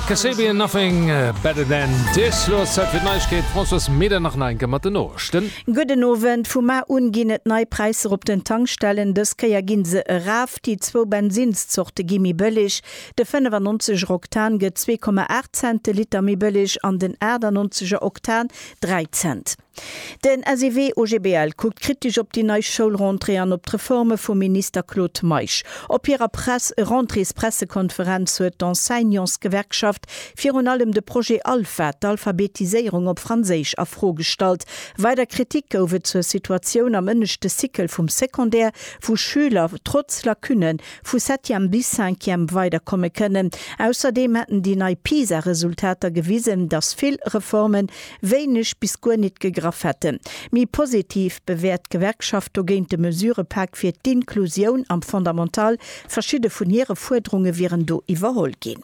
Kasabian nothing better than this Lo ass Zäit fir d'Neiegkeet, Françoise Meder nach nach eng Kéier mat den Noechten. Gudden Owend, Vu mar un ginn et nei Präisser op den Tankstellen. Dës Kéier ginn se eraf. Déi zwou Bensinnszorte gi méi bëlleg. De 95 er Oktan gëtt 2,8 Cent de Liter méi bëlleg an den 98 er Oktan 3 Cent. Den SEW OGBL kuckt kritesch op déi nei Schoulrentrée an op d'Reforme vum Minister Claude Meisch. Op hirer Press Rentréespressekonferenz huet d'Enseignantsgewerkschaft virun allem de Projet Alpha, d'Alphabetiséierung op Franséisch, a Fro gestallt. Weider Kritik gouf et zur Situatioun am ënneschte Cycle vum Secondaire, wou Schüler trotz Lacune vu Septième bis Cinquième weiderkomme kënnen. Ausserdeem hätten déi nei PISA-Resultater gewisen, datt vill Reformen wéineg bis guer nit gegraff hätte mi positiv bewäert d'Gewerkschaft dogéint de Mesurepak fir d'Inklusioun am Fondamental. Verschidde vun hire Fuerderunge wieren do iwwerholl ginn.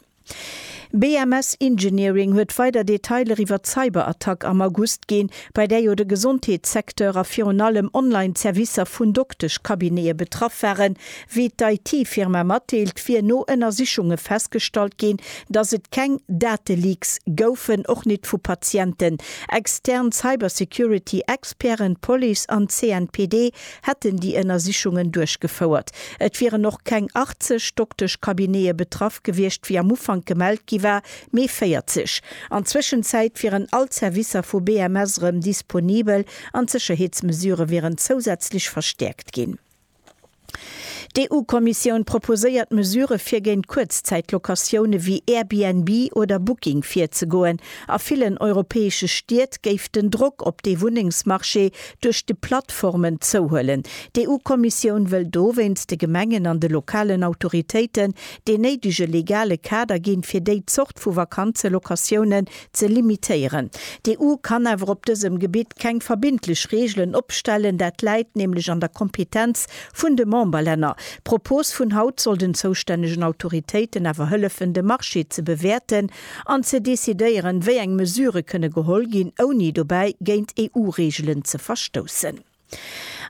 BMS Engineering huet weider Detailer iwwer d'Cyberattack am August ginn, bei där jo de Gesondheetssecteur a virun allem Online-Servicer vun Dokteschcabinete betraff waren, Wéi d'IT-Firma matdeelt, wier no Ënnersichunge festgestallt ginn, dass et keng Dateleaks goufen, och nit vu Patienten. Extern Cybersecurity-Experten, d'Police an d'CNPD hätten déi Ënnersichungen duerchgefouert. Et wieren och keng 80 Dokteschcabinete betraff gewiescht, wéi am Ufank gemellt gi war, mee 40. An d'Zwëschenzäit wieren all d'Servicer vu BMS erëm disponibel an d'Sécherheetsmesurë wieren zousätzlech verstäerkt ginn. D'EU-Kommissioun proposéiert Mesurë fir géint Kuerzzäit-Locatioune wéi Airbnb oder Booking virzegoen. A villen europäesche Stied géif den Drock op dee Wunnengsmarché duerch de Plattformen zouhuelen. D'EU-Kommissioun wëll dowéinst de Gemengen an de lokalen Autoritéiten deen néidege legale Kader ginn, fir déi Zort vu Vakanzelocatiounen ze limitéieren. D'EU kann awer op dësem Gebitt keng verbindlech Reegelen opstellen, dat läit nämlech an der Kompetenz vun de Memberlänner. D'Propos vun haut soll den zoustännegen Autoritéiten awer hëllefen, de Marché ze bewäerten an ze decidéieren, wéi eng Mesure kënne geholl ginn, ouni dobäi géint EU-Reegelen ze verstoussen.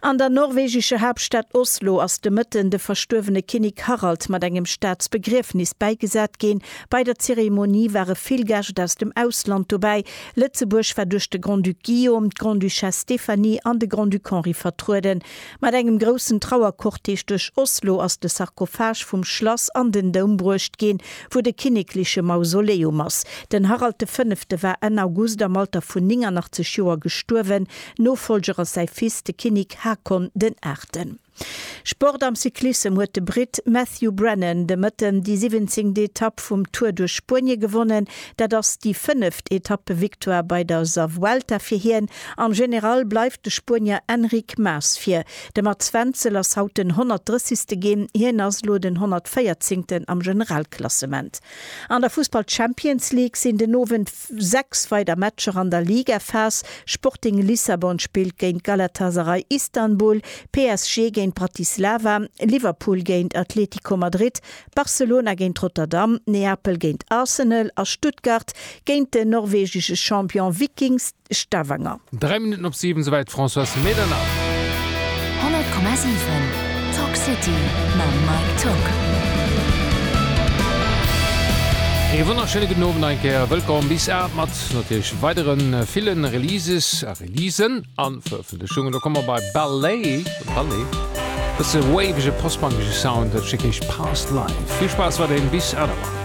An der norwegescher Haaptstad Oslo ass de Mëtten de verstuerwene Kinnek Harald mat engem Staatsbegriefnis bäigesat ginn. Bei der Zeremonie ware vill Gäscht aus dem Ausland dobäi. Lëtzebuerg war duerch de Grand-Duc Guillaume, d'Grande-Duchesse Stéphanie an de Grand-Duc Henri vertrueden. Mat engem groussen Trauercortège duerch Oslo ass de Sarkophage vum Schlass an den Doum bruecht ginn, wou de kinnekleche Mausoleum ass. Den Harald de Fënnefte war Enn August am Alter vun 89 Joer gestuerwen. Nofollger ass säi Fils, de Kinnik Haakon den Aachten. Sport am Cyclissem huet de Britt Matthew Brennan de Mëtten déi siwwenzéngt Etapp vum Tour duerch Spuenie gewonnen. Dat ass déi fënneft Etappevictoire bei der sa Vuelta fir hien. Am General bleift de Spuenier Enric Mas vir. De Mats Wenzel ass haut den 130. ginn. Hien ass elo den 114. am Generalklassement. An der Fussball Champions League sinn den Owend. Sechs weider Matcher an der Ligaphas, Sporting Lissabon spillt géint Galatasaray Istanbul, PSG géint Bratislava, Liverpool géint Atlético Madrid, Barcelona géint Rotterdam, Neapel géint Arsenal a Stuttgart géint den norwegesche Champion Viking Stavanger. Dräi Minutten op siwen, souwäit d'Françoise Medernach. 100,7 Talk City mam Mike Tock. Ee wonnerschéine gudden Owend nach eng Kéier. Wëllkomm bis aacht mat natierlech weidere ville Releases a Releasen a Verëffentlechungen. Lo komme mer bei Ballet, Ballet, bësse wavege post-punkege Sound, dat ass dee Kéisch Past Life. Vill Spaass weiderhin bis aacht Auer.